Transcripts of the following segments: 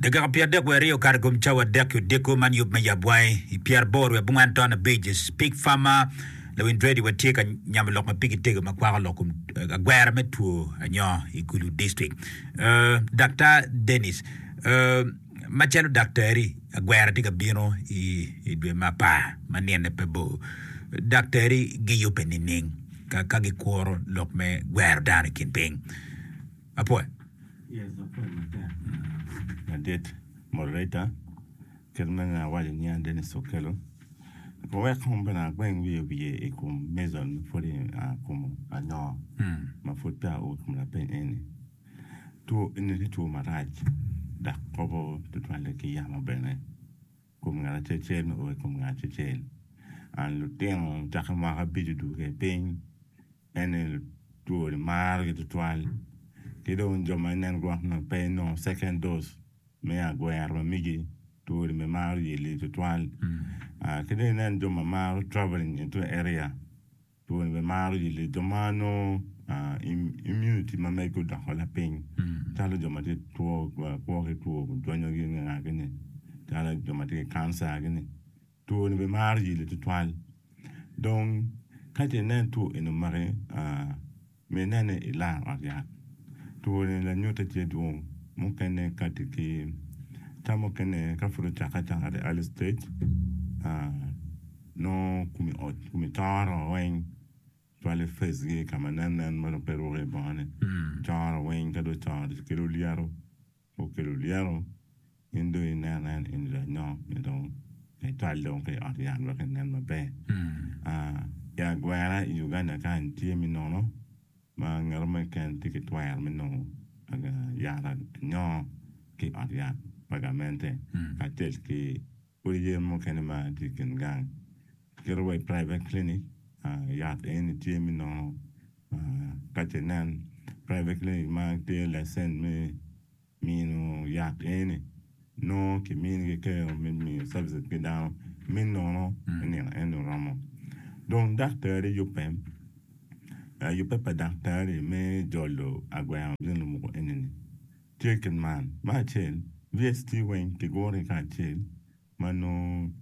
Dakika pyer adek wiye aryo okato i kom cawa adek ki odiko man yub me yabwangi i pyer aboro wiye abongwen taun abic i Pig Farmer, Lawiny Dreddy wa tye ka nyamo lok ma pigi tego ma kwako lok kom agwera me two anyo i Gulu District. Uh, Daktar Dennis, uh, macalo daktari, agwera tye ka bino i, i dwe ma apar ma nine pe bor. Daktari giyube nining ka, ka gikuro lok me gwero dano i kin piny? apwony madit moderator kit ma nongo awaco nyinga Dennis Okello pe wek kong bene agweng wiye wiye i kom Mason ma pwod i kom anyoo ma pwod peya oo i kom lapeny eni two eni tye two marac dok kobo tutwalle ki yamo bene. Kom ngat acel-cel o i kom ngat acel. An lutino cakke mwaka abico dwogo kede piny, ene two ni maro gi twatwal. Ki dong jo ma inen gwok nongo pe inongo second dose me agwero ma migi, two ni bene maro yelli twatwal. Ki dong inen jo ma maro travelling into area. Pol bimaro yilli jo ma nongo immunity ma megi odoko lapiny calo jo ma tye ki two kwo ki two dwonyo gi nge nga gini calo jo ma tye ki cancer gini two ni bimaro yilli tutwal dong ka ce inen two eni omaki Mine ni ilar ot yat. Twoni lanyutte tye dwong, mukene kati ki ka mukene ka pud ocakke acaka the early stage, nongo kumi ot kumi coro weng cwale face gi kama nen nen ma dong pe ruko i bongo ni coro weng ka dong ocoro ci kelo lyeto. okelo lyero in dong ineno en eni lanyok ni dong me twal dong ki i ot yat wek enen maber. I agwera i Uganda kany tye me nono ma ngeto mo keken tye ki twero me nongo yat anyoo ki i ot yat pa gamente kacel ki odi yen mukene ma tye i kin gang. Kit wa i private clinic yat eni tye me nono Ka ce nen, private clinic ma tye licensed me mino yat eni nongo ki minigi kero me miyo services ki dano me nono i nino eni oromo. Dong daktari yubbe, yubbe pa daktari me jolo agwengo gin lumuku enini tye kit man, Me acel, VST weng ki guru ki kacel ma nongo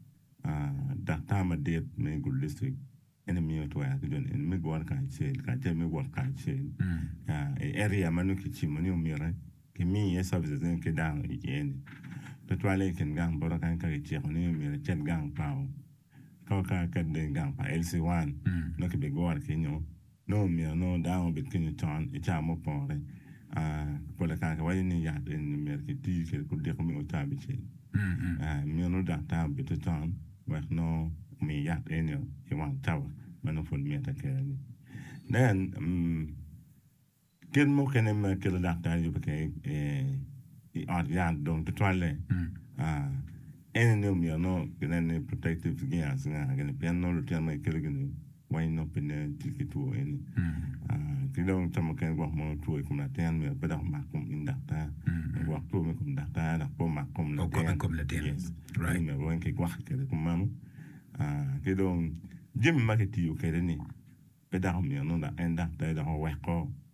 daktar madit me gudo district. En aye miyo twero ki jo nino me gure kacel, kacel me wot kacel i area ma nongo kicimo ni omyero kimi iye services eni ki dano iye-ni. Tutwalle i kin gang bota kany ka kiciko ni omyero icit gang pa kor kar iket dong i gang pa LC one nongo kibigure kenyo. Nongo omyero nongo dano obed kenyo con i cawa mupore. Pol kare kiwaco ni yat eni omyero kiti kwede kudiko me ocawa abicel. Meno daktar obite con. wek nongo omi yat enio i wang cawa ma nongo pud mitte kene-ni. Nen, mm, kit mukene ma kelo daktar yubo kede i, i ot yat dong tutwalle. Ah, ene ni omyero nongo ginen ni protective gears nga gini pien nongo lutino ma gikelo gini Weny nongo pe nen tye ki two eni. Ki dong ca mukene gwok mono two i kom latin myero pe dok omak kom in daktar. Gwok two me kom daktar dok pe omak kom latin. Okobe kom latin. Yes. Right. Myero weng ki gwokke kede kom meno. Ki dong jami ma ki tiyo kede ni pe dako myero nongo dok en daktar dok oweko.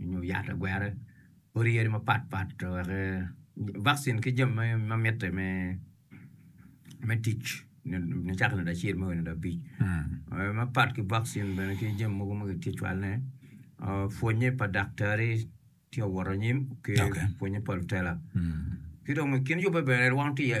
nyo yat lagwere odi yadi mapat pat wek vaccine ki jami ma mitte me tic nicaka nade acel me oo nade abic mapat ki vaccine bene ki jami mogo ma kitye cwalone pwonye pa daktari tye ka wot anyim ki pwonye pa lutela ki dong i kin yubbe bene rwom tye iye.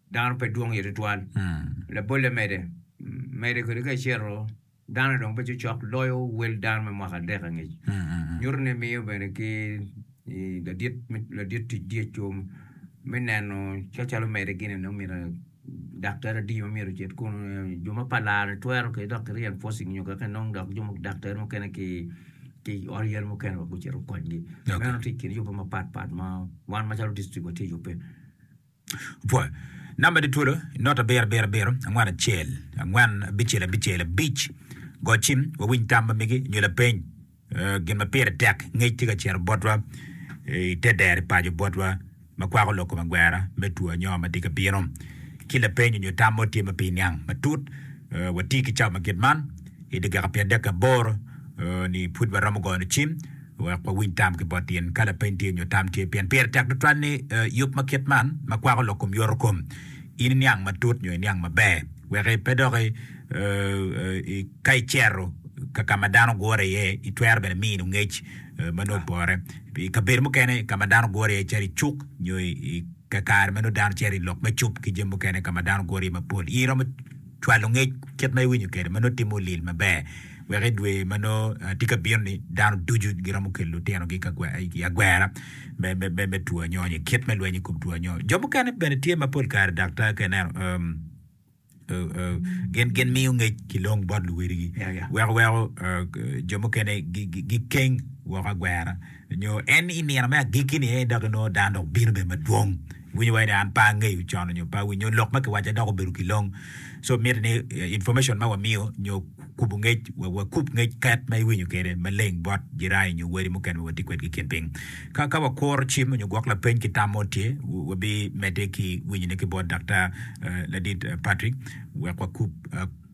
Dano pe dwong iye tutwal. Labolle mede, mede kwede ka icito, dano dong pe cokcok loyo wel dano me mwaka adek angec. Nyuto ni miyo bene ki ladit, ladit tic dyec o me neno calo mede gin ene omyero daktari adi ma myero ocit kunu. Jo ma pa laro ni twero kwede dok ki reinforcing nyo kaki nongo dok jo mu daktari mukene ki ki ot yere mukene wa gucito gukonygi. Meno tye i kin yubbe mapat pat ma wan macalo district watye yubbe. Opwoyo. Namba di twolo i nota abiro abiro abiro angwen acel angwen abicel abicel abic. Go cim, wawiny tam ma migi, nyo lapeny. Eh, Gin ma pire tek, ngec tye ka cito botwa eh, i te deri paco botwa ma kwako lok kom agwera me two anyonga ma tye ka bino. Ki lapeny nyo tam mo tye ma pe iniang matut, eh, wati ki cawa ma kit man i dakika pyerdek ki aboro eh, ni pud waromo goyo cim. Wek wawiny tam ki bot in, ka lapeny tye nyo tam tye, pien pire tek tutwal ni yub ma kit man ma kwako lok kom yoto kom in iniang matut nyo iniang maber. Wek pe dok ka icero ka ka ma dano gure iye, itwero bene mino ngec ma nongo opore. I kabedo mukene ka ma dano gure iye calo i cuk nyo i kakare ma nongo dano cito i lok me cup ki jami mukene ka ma dano gure iye mapol, in iromo Cwalo ngec kit ma iwinyo kwede ma nongo timo lil maber, wek i dwe ma nongo tye ka bino-ni, dano ducu giromo kelo litinogi i agwera me two anyongo nyo kit me lweny i kom two anyongo. Jo mukene bene tye ma pol kare daktar ka ineno gin miyo ngec ki long bot luwadigi weko weko jo mukene gikeng woko agwera nyo en i nino me agikki-ni aye dok inongo dano dok bino bene madwong. winyo wai ni an pe angeyo con nyo pe awinyo lok ma kiwaco adok obedo kilong so miti ni information ma wamiyo nyo kubu ngec wakub ngec ket ma iwinyo kede maleng bot jirani nyo wadi mukene ma watye kwedgi kin ping ka ka wakuro cim onyo gwok lapeny ki tam mo tye wabi mede ki winyone ki bot Daktar ladit Patrick wek wakub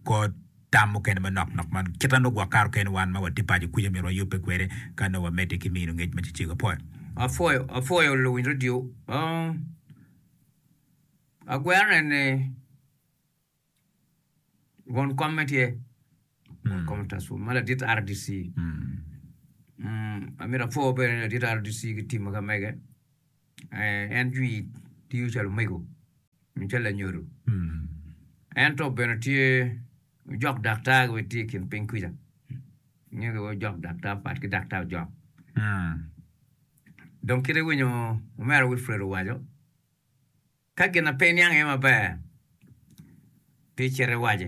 kod tam mukene manok nok ma kite nongo gwok kare okene wan ma watye paco kwica myero wayubbe kwede ka nongo wamedde ki mino ngec ma cecego. Apwoyo. Apwoyo, apwoyo luwiny radio. Agwerne ni won komme tye, won kom Taswum ma ladit RDC. Amito apwoo bene ladit RDC ki team ma ka mege. En jwi tiyo calo omego. Nen calo anyodo. Ento bene tye ojok daktar wek tye i kin piny kuca. Inge ki ojok daktar pat ki daktar ojok. Dong kit iwinyo omera Wilfred owaco, ka gin na pe iniang iye maber, pi cit iwaci.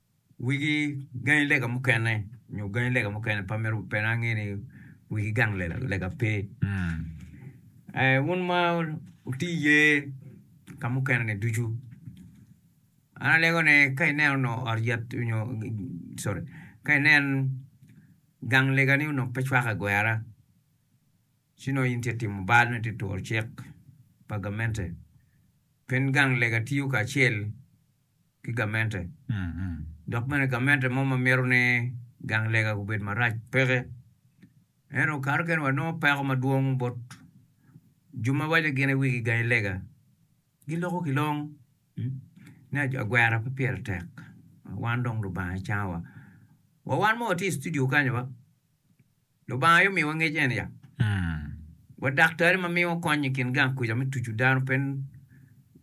Wigi gangi lega mukene nyo gangi lega mukene pa mito pe na ange ni wigi gang lega pe. Eh, wun ma wuti iye ka mukene ni ducu. An alego ne ka ineno no ot yat nyo sorry ka inen gang lega ni onongo pe cwaka gwera ci nongo in tye timo bal nongo itye turo cik pa gamente pien gang lega tiyo kacel ki gamente, dok bene gamente mo ma mito ni gang lega gubed marac peke. Ento kato kene wanongo peko madwong bot jo ma waco gin wigi gangi lega. Giloko ki long ni agwera pe pire tek, wan dong Lubanga cangowa. Wa wan ma watye i studio kany-nyu Lubanga aye omiwa ngec eni ya. Wa daktari ma miwa kony i kin gang kuca me tucu dano pe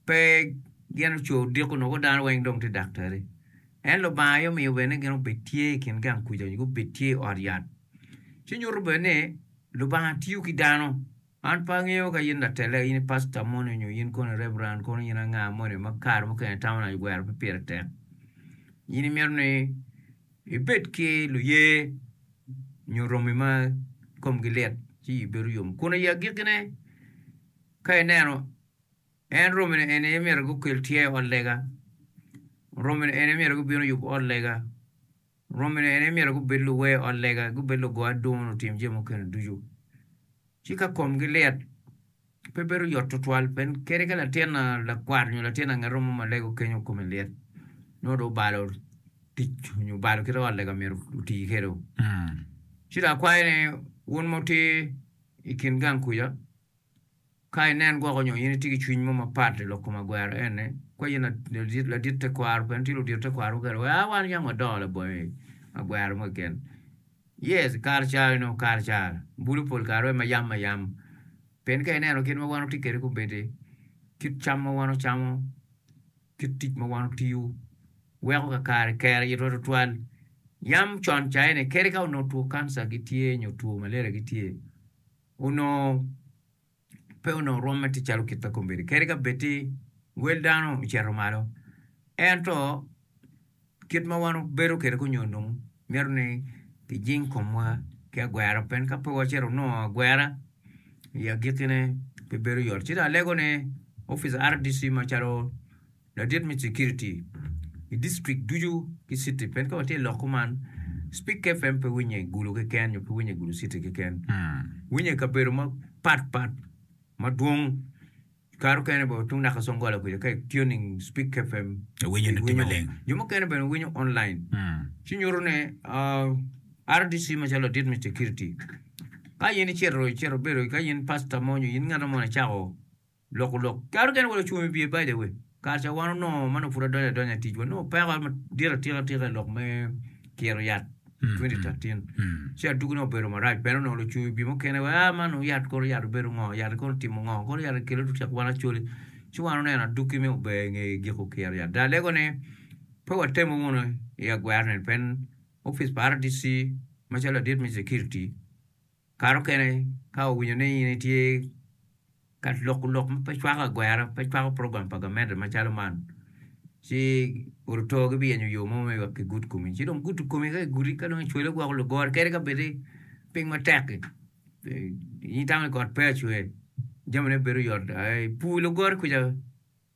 pe gin oco odiko noko dano weng dong tye daktari. En Lubanga aye omiyo bene gin obed tye i kin gang kuca nyo gubed tye i ot yat. Ci nyuto bene ni Lubanga tiyo ki dano. An pe angeyo ka in latella, in i pasta moni nyo in kono i reverend kono in anga moni ma kare mukene itamo ni agwero pe pire tek. In imito ni ibed ki luye nyo romi ma komgi lit ci iyi bedo yom. Kun i agikkine, ka ineno, en romine eni aye myero gukel tyer i ot lega, romine eni aye myero gubin oyub ot lega, Romine en aye myero gubed luwer ot lega, gubed lugo adungo nyo lutim jami mukene ducu. Ci ka komgi lit, pe bedo yot tutwal pien kadi ka latin lakwat nyo latin angeto mo ma lega okenyo kome lit, nongo dong obalo tic nyo obalo kit ot lega myero oti kwede. Ci dong akwayo ni wun ma wutye i kin gang kuca, Ka inen gwoko nyo in itye ki cwiny mo mapat i lok kom agwero eni, kwa in ladit tekwaro bene tye ludito tekwaro mukene wek a wan yam wadongo labongo i agwero mo keken. Yes, i kare ca onongo kare ca bulu pol kare dong mayam mayam. Pien ka ineno kit ma wan watye kwede kobedi, kit cam ma wan wacamo, kit tic ma wan watiyo weko kakare kero itwa tutwal. Yam con ca eni kadi ka onongo two kanca gitye nyo two malaria gitye, onongo pe onongo rwomme tye calo kit ma kombeddi. Kadi ka bed ni wel dano ocito malo, ento kit ma wan wabedo kwede kany onyo dong mito ni kijing komwa ki agwera pien ka pe wacito wanongo agwera i agikkine pe bedo yot. Ci dong alegone opic RDC macalo Ladit me Cekiriti i District ducu ki Citi ped ka watye lok kuman, Spik FM pe winye i Gulu keken nyo pe winye i Gulu Citi keken, winye i kabedo mapat pat madwong, kare okene bene tung naka Congola kuca ka i tuning Spik FM iwinyo, jo mukene bene winyo online, ci nyuto ni RDC macalo ladit me Cekiriti ka in icito bedo ka in Pasta mo nyo in ngat mo icako. Loko lok. Kato kene welo ocung i wiye by the way. Kare ca wan onongo ma nongo pud adonyo adonya i ticwa, nongo peko madit atika tika i lok me kiro yat 2013. Ci adwogi nongo obedo marac bene onongo lucung i wiye mukene wa ah man nongo yat kono yat obedo ngo, yat kono otimo ngo, kono yat ekelo tutyak wan acoli. Ci wan oneno adwogi me ober i nge giko kiro yat. Dok alego ni pe watemo wunu i agwero neni pien opic pa RDC macalo ladit me security, Kare mukene ka owinyo ni in itye ka loko lok ma pe cwako agwera, pe cwako program pa gamente macalo man, ci odotor gibiyenyo yo mo me wek gigud komi. Ci dong gudo komi ka gigudi ka dong icwele gwoko lugore kadi ka bed ni piny matek-ki, in itamo ni kot pe acwe, jamine bedo yot. Pur lugore kwica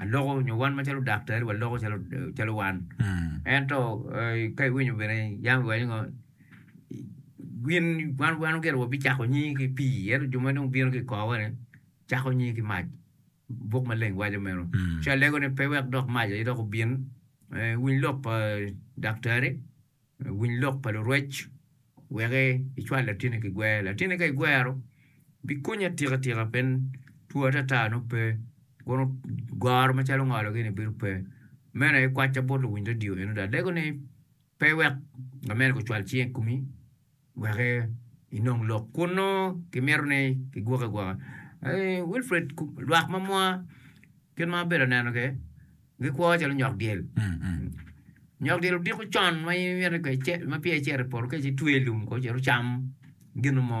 aloko nyo wan macalo daktari waloko calo calo wan ento ka iwinyo bene yam iwaco ngo gin wan wan ogero wabicako nyingi ki pii ento jo ma dong bino ki kowa ni cako nyingi ki mac buk maleng waco meno ci alego ni pe wek dok mac aye dok obin winy lok pa daktari Winy lok pa lurwec weke icwal latini ki gwer. Latini ka igwero bikonyi atika tika pien two atata nongo pe kono goro macalo ngolo gini bedo pe. Mene kwacca bot luwiny radio eno dok adeko ni pe wek lamer ocwal cinge i komi. weke inong lok kunnu kimito ni kigwoki agwoka Wilfred lwak ma mwa kit ma abedo aneno ke gikwo calo nyok dyel nyok dyel odiko con ma in imito ma peya icito i poto ka ci twe i lum ko cito cam ginu mo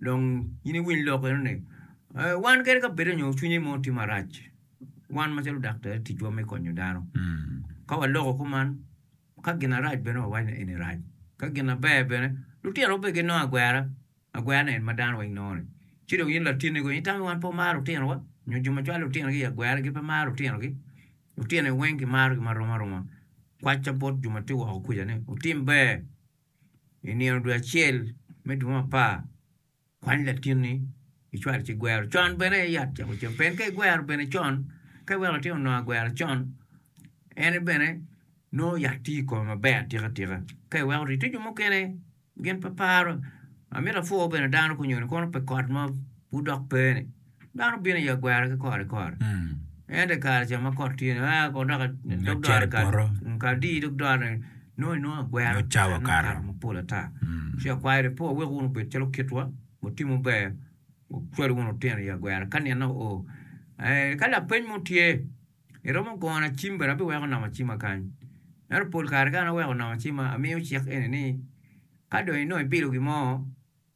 Dong in iwiny lok eno ni, wan kadi ka bed onyo cwinye mo tye marac, wan macalo daktar ticwa me konyo dano. Ka waloko kuman, ka gin arac bene wawaco ni eni rac, ka gin aber bene lutino gubed ginongo agwera, agwera ni en ma dano weng nongo ni. Ci dong in latinni kono in itamo ni wan pe wamaro lutinowa? Nyo jo ma cwalo lutinogi i agwera gin pe maro lutinogi? Lutino weng kimarogi marom aroma. Kwacca bot jo ma tye woko kwica ni wutim ber I nino dwe acel me dwe mapar, kwany latinni icwal ci igwero con bene i yat camo cam. Pien ka igwero bene con, ka iweko latin onongo agwero con, en bene nongo yat tye i kome maber atika tika. Ka iweko oti tye jo mukene gin pe paro, amito apwoo bene dano kunyo ni kono pi kot ma pud dok pe-ni. dano bino i agwara ki kore kore. Ento i kare ca ma kot tye ni, ah, kot dok dog dore Cari poto. kare adi dog dore nongo inongo agwero Nongo cawa nongo kato. kato mapol ata. Ci akwayo ni po wek wun obed calo kitwa, wutimu ber, wucwal wunu lutino i agwera ka nino oo. Eh, ka lapeny mo tye, iromo gona cim bene abiweko nama cima kany. Ento pol kare ka an aweko nama cima, amiyo cik eni ni ka dong inongo ibilo gin mo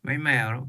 ma imero,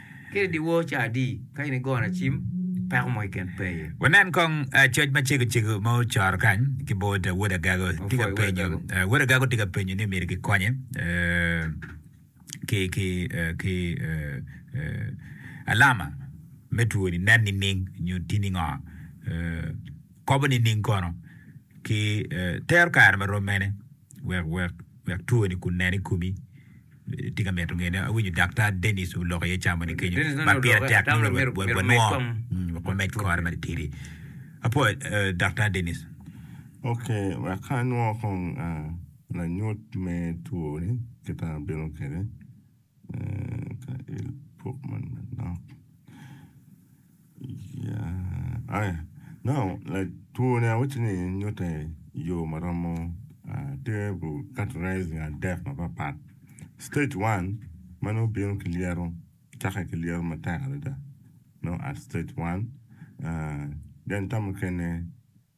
Kadi i dyewor ca adi ka in igoyo lacim, peko mo keken pe aye. Wanen kong coc macego cego ma ocoro kany ki bot Wod Agago. Tye ka penyo, Wod Agago tye ka penyo ni myero kikonye ki alama me two ni, nen nining nyo tini ngo, kobo nining kono ki tero kare marom mene wek two ni kun nen i komi? Tye ka mito ngene. Awinyo Daktar Dennis oloko iye ca moni kenyo ma pire tek nongo wanongo wamed kore matitidi. Apo Daktar Dennis. Ok, wek ka anongo kong lanyut me two ni kit ma abino kwede ka il pok man manok. Yeah. Aya. No, like twone I wish ni nyutte yo ma romo ah, tye bu categorizing adek mapapat. Stage 1 ma nongo bino ki lyeto, cakke ki lyeto matek adada. No at stage 1. Ah, then ka mukene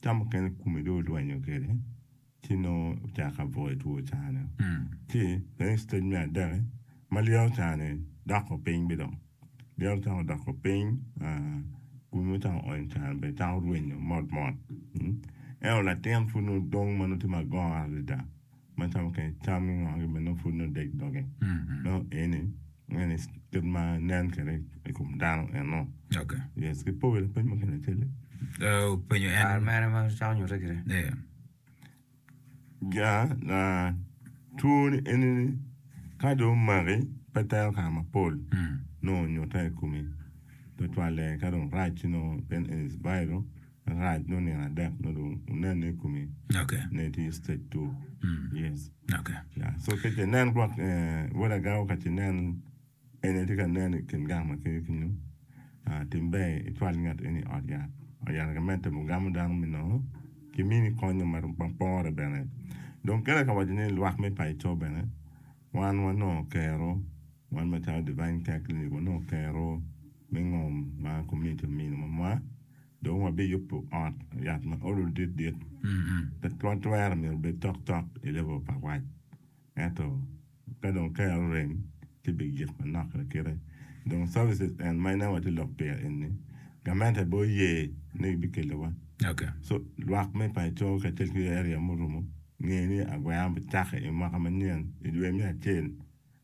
Tam mukene kome dong olwenyo kwede ci nongo ocako ka buto i two cane. Ci bene i stage me adek-ki ma lyeto cane doko piny bene dong. Lyeto cako doko piny kome dong cako onyo cane bene cako rwenyo mot mot. Ento latin pud nongo dong ma nongo tye magor adada. macalo mukene cam ki ngo kibene nongo pud nongo deg doge nongo eni eni kit ma nen kwede i kom dano enno Oka. yes ki powi lapeny mukene acel Uh, penyo en. Kare mere ma cako nyutte kiri. Yeah. ja na twoni eni ni ka dong omaki pe tero kare mapol Mm. nongo nyutte i komi tutwalle ka dong rac ci nongo then it is viral Alright nongo nino adek nongo dong wunene i komi ne tye stage two yes yeah so ka ce nen gwok wod agawwa ka ce nen en aye tye ka nen i kin gang ma kene kenyo tim ber icwal ngat eni i ot yat, ot yat ka medde temo gamo dano me nongo ki mini konyo ma pore bene dong kene ka waco ni lwak me paco bene wan wanongo kero wan macalo Divine Care Clinic wanongo kero me ngom ma komuniti omino mamwa. Dong wabiyubo ot yat ma olo dit dit, pe twatwero myero obed tok tok i level pa wac. Ento ka dong kare orem, ci bigik manok lakite. Dong services en ma ineno watye lok pire eni, gamente aye oye ni gibikelowa. So lwak me paco kacel ki area murumo nge ni agwero bicako i mwaka manyen i dwe me acel.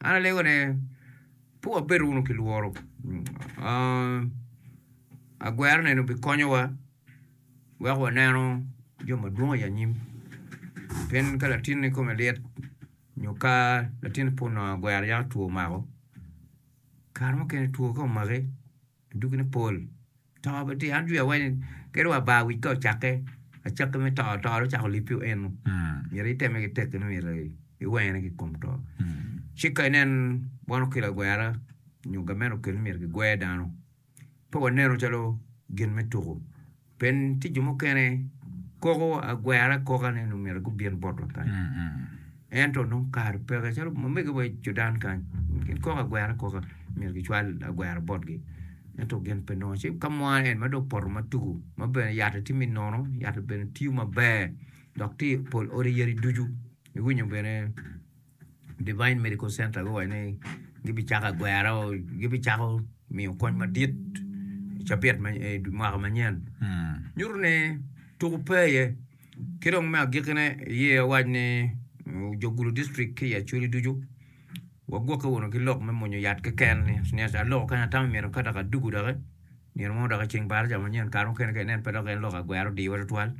An alego ne pe wabed wunu ki lworo, agwero nenu bikonyowa wek waneno jo madwong i anyim, pien ka latinni kome lit nyo ka latinni pud nongo agwero yako two omako, kare mukene two ka omaki. Dogine pol, to bene tye. An jwi awaco ni kadi wa bar wic ka ocakke, acakki me to, to dong ocako lipi eno. Myero iteme ki tekki ni myero iwene ki kom to. Ci ka inen bot okelo agwera nyo gamente okelo ni myero kigwer dano, pe waneno calo gin me tuku. Pien tye jo mukene koko agwera akoka ni nongo myero gubin botwa kany, ento nongo kare peke. Calo mamegiwa wa i Judan kany, gin koko agwera akoka myero gicwal agwera botgi, ento gin pe nongo. Ci ka mwana en ma dong opoto ma tuku, ma bene yatte tye me nono, yatte bene tiyo maber, dok tye i pol odi yadi ducu, iwinyo bene. Devine Medical Center guwaco ni gibicako agwero, gibicako miyo kony madit i cabit ma i mwaka manyen. Nyuto ni tuko pe iye. Ki dong me agikkine, iye owaco ni jo Gulu District ki i Acholi ducu wagwokke wunu ki lok me mwonyo yat keken, ni aloko kany atamo myero ka dok adugu doki. Nino mo dok i ceng par ca manyen, kare mukene ka inen pe dok en lok agwero odiwa tutwal,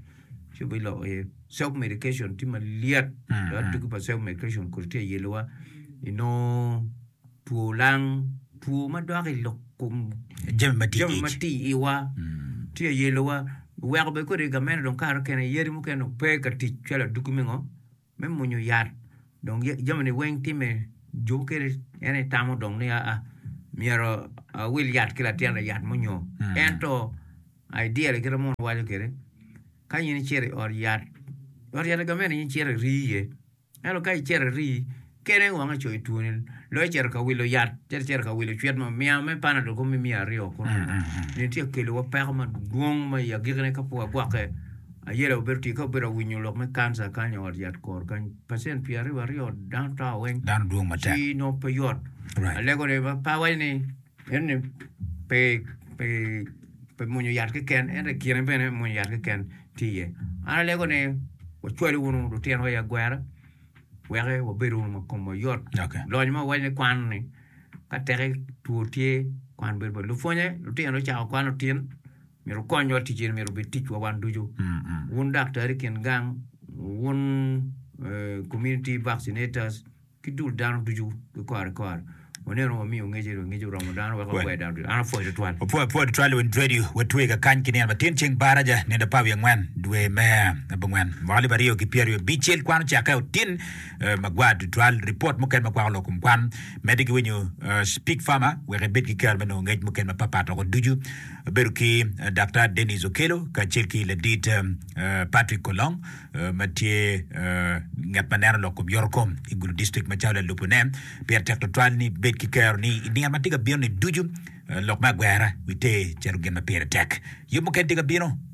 ci obin loko iye. Self medication tye malyet dok tugi pa self medication kodi tye ayelowa inongo two lang, two ma dok i lok kom Jami ma tye jami ma ic. tye iwa tye ayelowa. Weko bene kodi gamente dong kare mukene yadi mukene dong pe ka tic calo aduki me ngo. me munyu yat dong jami ni weng tye me jubu kede en aye tamo dong ni aa myero awil yat ki latin aye yat munyu ento ideal kit ma mono waco kede ka in icito i ot yat ot yat gamente in icito iri iye ento ka icito iri kene weng icoyo two ni dong icito ka wilo yat cito icito ka wilo cwit mo miya me panadol kong me miya aryo kunu nyo tye ka kelo wa peko madwong ma i agikki ne ka pud wagwokke Aye dok obedo tika obedo awinyo lok me kanca kany i ot yat kor kany pacent pyer aryo aryo dano tower weng Dano dwong matek. ci nongo pe yot Right. alego ni ma pa waco ni en ni pe pe pe mwonyo yat keken ento i kine bene mwonyo yat keken tye iye an alego ni wacwali wunu lutino wa i agwera weke wabedo wunu ma komwa yot Okay. lony ma wawaco ni kwano ni ka teke two tye kwan bedo bot lupwonye lutino cako kwano tin Myero wukonywa tic eni myero obed ticwa wan ducu. Wun daktari kin gang, wun community vaccinators, ki dul dano ducu ki kore kore, waneno wamiyo ngec eni, ngec oromo dano wek wapwoyo dano ducu. An apwoyo tutwal. Wapwoyo pwod twal i wi radio. Watwe i kakany ki nino matin ceng Baraja nino apar wiye angwen dwe me abongwen mwaka alip aryo ki pyeraryo abicel. Kwan ocakke otin magwar tutwal. Ripot mukene ma kwako lok kom kwan medde ki winyo Pig Farmer wek ibed ki kero me nongo ngec mukene mapat pat woko ducu. Abedo ki Daktar Denis Okello kacel ki Ladit Patrick Kolong ma tye ngat ma neno lok kom yorokom i Gulu District macalo lalubone. Pire tek tutwal ni bed ki kero ni i nino ma tye ka bino-ni ducu lok me agwera witer calo gin ma pire tek. Yub mukene tye ka bino.